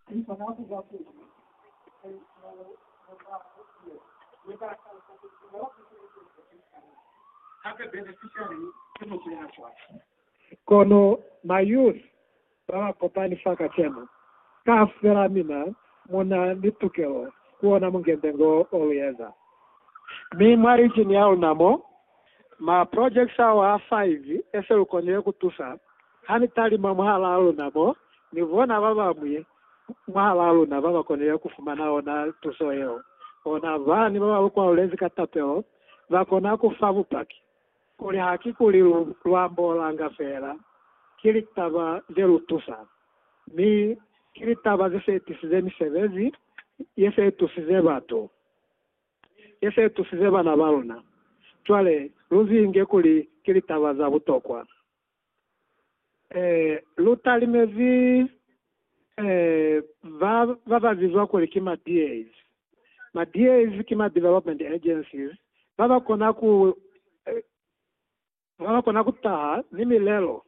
Ki kona ku ba teñi talisano mwa mwaha yo ne ba talusa kuli ku na ni silikelizo se sitana. Hape beneficiary ki mutu ye na cwale. Kono ma youth ba ba kopani fa kacenu, kaufela mina mu na ni tukelo ku ona mungembe ngo o lu eza. Mi mwa region ya luna mo, ma projects ao a 5 e se lu konile ku tusa Ha ni talima mwahalaa luna mo ni bona ba bañwi mwahalaa luna ba ba konile ku fumana ona tuso yeo, ona ba ne ba ba lu kwalulezi ka tapelo ba kona ku fa bupaki kuli ha ki kuli lu lu ambolanga feela ki litaba ze lu tusanga, mi ki litaba ze se tisize misebezi ye se tusize batu, ye se tusize bana ba luna. Cwale lu zi nge kuli ki litaba za butokwa. Eh, lu talimezi eh, ba, ba ba bizwa kuli ki ma DAs. Ma DAs ki ma Development Agencies, ba ba kona ku, eh, ba ba kona ku taha ni milelo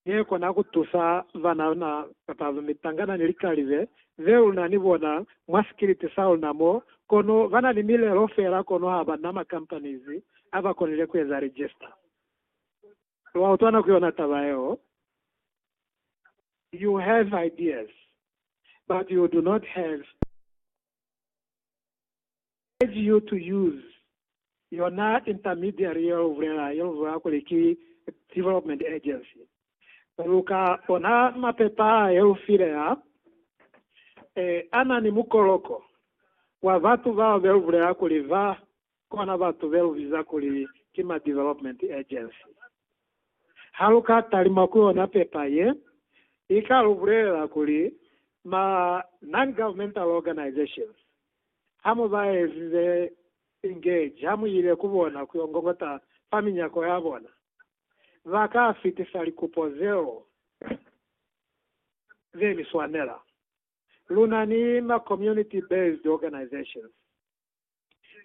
ye kona ku tusa banana kapa mitangana ni likalize ze lu na ni bona mwa sikiliti sa luna mo, kono ba na ni milelo fela kono ha ba na ma companies a ba konile ku eza register. Wa utwa na ku yona taba yeo? You have ideas, but you do not have I urge you to use yona intermediary ye lu bulela, ye lu bulela kuli ki development agency. Lu ka ona mapepa a ye lu file a, eh, a na ni mukoloko wa batu bao be lu bulela kuli ba kona batu belubiza kuli ki ma Development Agency. Haluka talima ku yona pepa ye, ika lubulelela kuli ma Non-Governmental Organizations hamu baezize engage hamuile ku bona kuyo ngongota fa minyako yabona, baka fitisa likupo zeo zeni swanela. Lunani ma Community-Based Organizations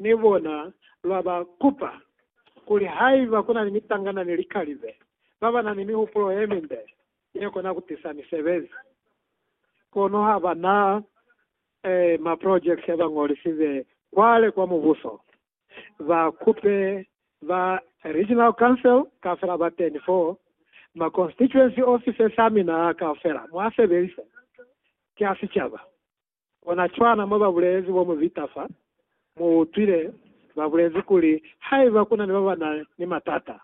ni bona lwa ba kupa kuli haiba ku na ni mitangana ni likalibe ba ba na ni mihupulo ye mimbe ye kona ku tisa misebezi. Kono ha ba na eh, maprojekiti a ba ñolisize kwale kwa Mubuso. Ba kupe ba Regional Council kaufela ba teni fo, ma constituency offices a mina kaufela, mwa sebelise. Ki a sicaba. Kona cwana mwa babulezi bo mubita fa, mu utwile babulezi kuli haiba kuna ni babana ni matata,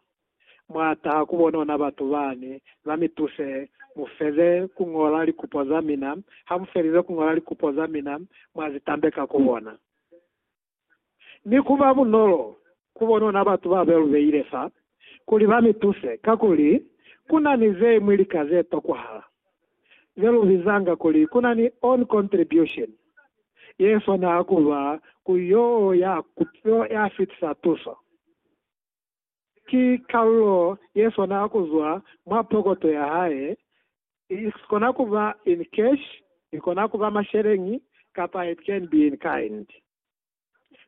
mwa taha ku bona ona batu bani ba mi tuse mu feze ku ñola likupo za mina, ha mu felize ku ñola likupo za mina mwa zi tambeka ku bona. ni ku ba bunolo ku bonona batu ba be lu beile fa kuli ba mi tuse, kakuli ku na ni ze ñwi lika ze tokwahala ze lu bizanga kuli ku na ni own contribution, ye swana ku ba ku yo ya ku yo ya fitisa tuso. Ki kalulo ye swana kuzwa mwa pokoto ya hae, i kona kuba in cash, i kona kuba masheleñi, kapa it can be in kind.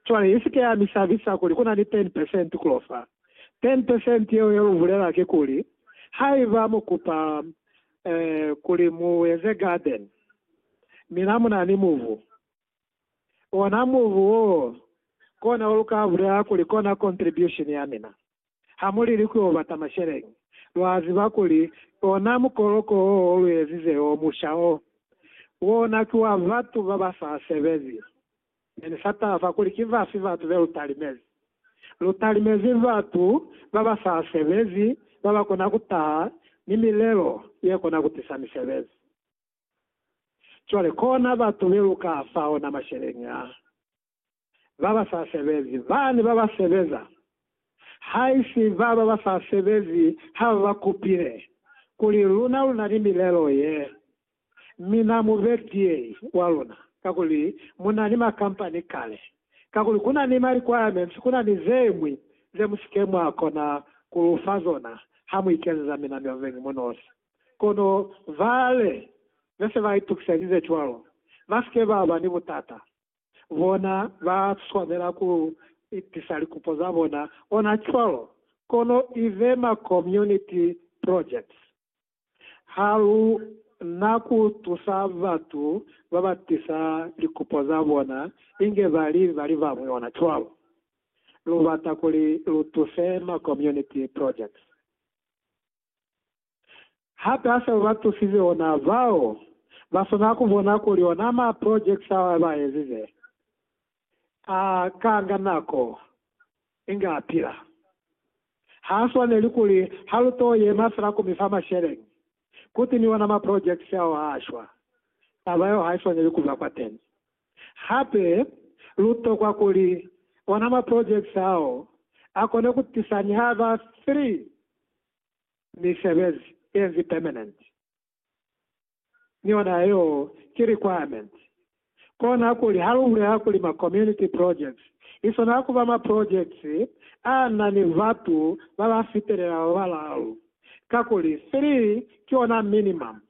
Cwale isike ya mi sabisa kuli kuna ni ten percent kulo fa. Ten percent yeo ye lu bulela kikuli, haiba mu kupa, eh, kuli mu eze garden, mi na muna ni mubu, Ona mubu woo, kona wa luka bulela kuli kona contribution ya mina. Ha mu lili ku yo bata masheleñi, lwa ziba kuli ona mukoloko wo o lu ezize yo musha o, wona ki wa batu ba ba sa sebezi. Ne ni sa tafa kuli ki bafi batu be lu talimezi. Lu talimezi batu ba ba sa sebezi ba ba kona ku taha ni milelo ye kona ku tisa misebezi. Cwale kona batu beluka fa ona masheleñi a baba sa sebezi, bani baba sebeza, haisi baba ba sa sebezi ha baba kupile kuli luna luna ni milelo ye, mi na mu be DA wa luna, kakuli muna ni ma company kale, kakuli kuna ni ma requirements, kuna ni zeñwi ze musike mwa kona kulufa zona ha muikezeza mina mioveñi munosi. Kono bale be se ba itukiselize cwalo, ba si ke ba ba ni butata. Bona ba swanela ku itisa likupo za bona ona cwalo, kono i be ma community projects. Ha lu na ku tusa batu ba ba tisa likupo za bona inge ba li ba li bañwi ona cwalo. Lu bata kuli lu tuse ma community projects. Hape a sa ba tusize ona bao ba swanela ku bona kuli ona ma projects ao a ba ezize a kanga nako inge a pila. Ha swaneli kuli ha lu to yema fela ku mi fa masheleñi, ku timiwa na ma projects ao a shwa. Taba yeo ha i swaneli ku ba kwateni. Hape lu tokwa kuli ona maprojekiti ao a kone ku tisa ni ha ba 3 misebezi ye nzi pemenenti, ni yona yeo ki requirementi. Kona kuli ha lu bulela kuli ma community projects i swanela ku ba maprojekiti a na ni batu ba ba fitelela ba balaalu, kakuli 3 ki ona minimum.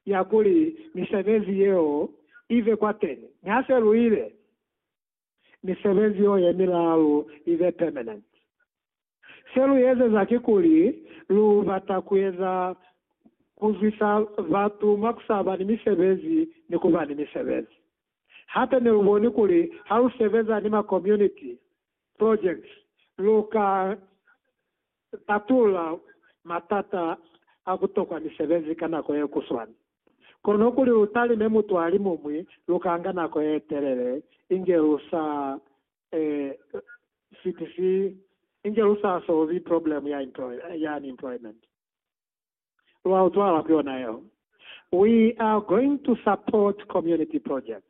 ya kuli misebezi yeo i be kwateni. Mi ha se lu ile, misebezi yeo ye milaalu i be permanent. Se lu ezeza kikuli lu bata ku eza ku zwisa batu mwa ku sa ba ni misebezi ni ku ba ni misebezi. Hape ne lu boni kuli ha lu sebeza ni ma community projects, lu ka tatula matata a ku tokwa misebezi ka nako ye kuswana. Kono kuli lu talime mutu a li muñwi lu ka nga nako ye telele inge lu sa fitisi inge lu sa solvi problemu ya unemployment. Lwa utwala ku yona yeo. We are going to support community projects.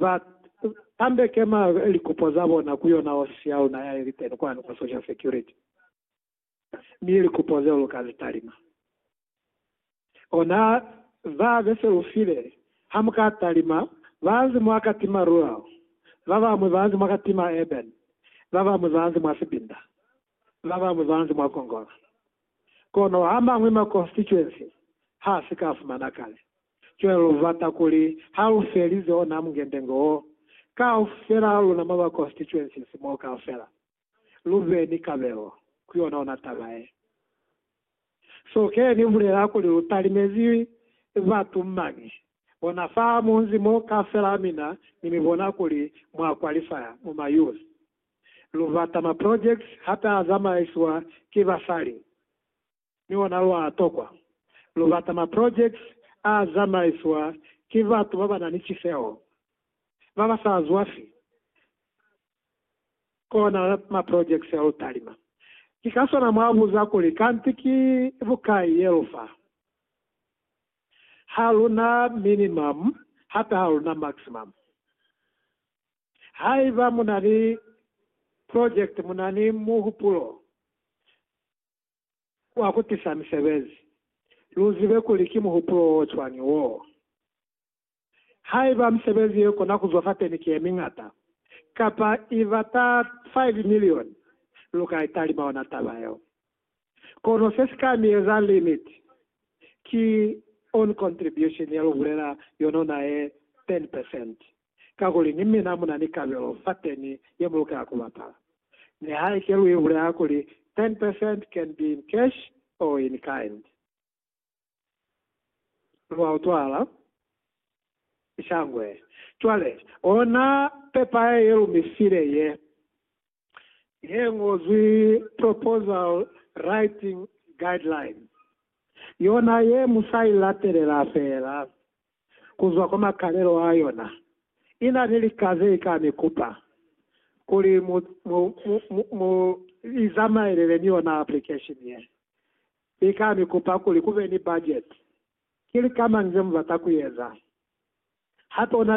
ba tambeke ma likupo za bona ku yona hosi ya luna ya ili teni kwanu kwa social security, mi likupo zeo lu ka zi talima ona za be se lu file. Ha mu ka talima ba nzi mwa katima rural, ba bamwi ba nzi mwa katima urban, ba bamwi ba nzi mwa sibinda. la ba Muzanzi mwa Kongolo. Kono a mañwi ma constituency ha si ka fumana kale. Cwale lu bata kuli ha lu felize ona mungendenge wo, kaufela ha luna mwa ba constituencies mo kaufela, lu be ni kabelo ku yona ona taba ye. So ke ni bulela kuli lu talimezi batu mañi bona fa munzi mo kaufela mina ni mi bona kuli mwa qualifya mu ma youth. Lubata ma projects hata a zamaiswa ki basali ni ona lwa tokwa. Lubata ma projects a zamaiswa ki batu ba ba na ni ciseho, ba ba sa zwafi ku ona ma projects a lu talima. Ki ka sona mwa buza kuli, Kanti ki bukai ye lu fa? Ha lu na minimum hata ha lu na maximum. Haiba mu na ni project, mu na ni muhupulo wa ku tisa misebezi, lu zibe kuli ki muhupulo o cwañi woo. Haiba misebezi ye kona ku zwa fateni ki ye miñata, kapa i bata 5 milioni, lu ka i talima ona taba yeo. Kono se si ka mi eza limit ki own contribution ye lu bulela yonona ye 10 percent. kakuli ni mina mu na ni kabelo fateni ye mu lukela ku bapala. Nihaike lu ibulela kuli ten percent can be in cash or in kind. Lwa utwala? Shangwe. Cwale, ona pepa ye lu mi file ye. ye ñozwi Proposal Writing Guidelines, yona ye mu sa i latelela feela ku zwa kwa makalelo a yona, i na ni lika ze i ka mi kupa kuli mu, mu, mu, mu, mu li zamaelele ni yona application ye. I ka mi kupa kuli ku be ni budget, ki lika mañi ze mu bata ku eza, hape u na